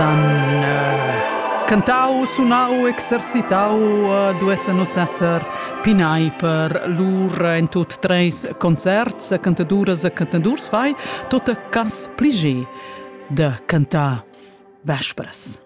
han cantau, sunau, exercitau duessen nus esser pinai per lur en tut treis concerts, cantaduras e cantadurs fai tot cas pligie de cantar vespres.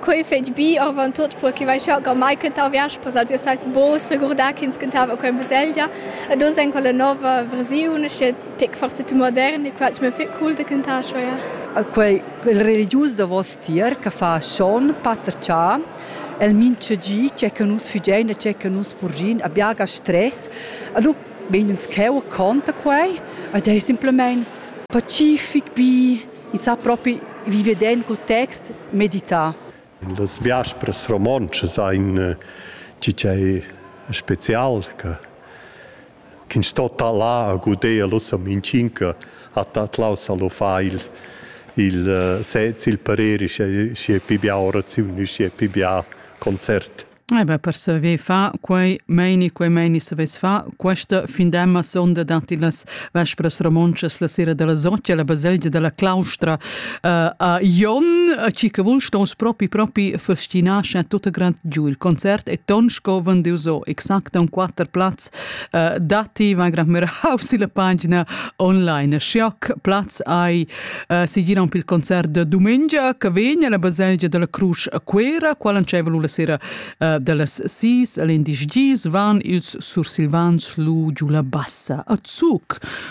Quei fetg bi avant tot per che vai schau mai cantau vespers als ihr seis bo segurdar ch'ins cantava quella baselgia ed oz en quella nova versiun che tec forza più modern e quels mi fe cool da cantar scho ja. Quei il religius davos tier che fa schon pater cha el mincha gi che che nus figein e che che nus purgin abiaga stress a lu meins cheu conta quei ed ei simplemente pacific bi e sa propi vive den co text medita. Las biaspras romontschas ein tgi ch'ei special che ch'in sto talar a guder l'ossa minchinca at atlaus a lo fa il il uh, sez il pareri sche sche pi bia oraziun u sche pi bia concert. Eh beh, per saver fa quei meini, quei meini savess fa questa findemma sonda dati las vespras romontschas la sera della Sottia, la baselgia della Claustra, a Jon ci che vul stos propi propi festinar scha tutta grand giu il concert e ton scoven de so exact un quatter platz dati va grand mirau si la pagina online schac platz ai si gira un pil concert de domenica che vegna la baselgia della Cruz a Quera qual anceva la sera dallas 6 all'indisch gis van ils sursilvans lu giu la bassa a Zug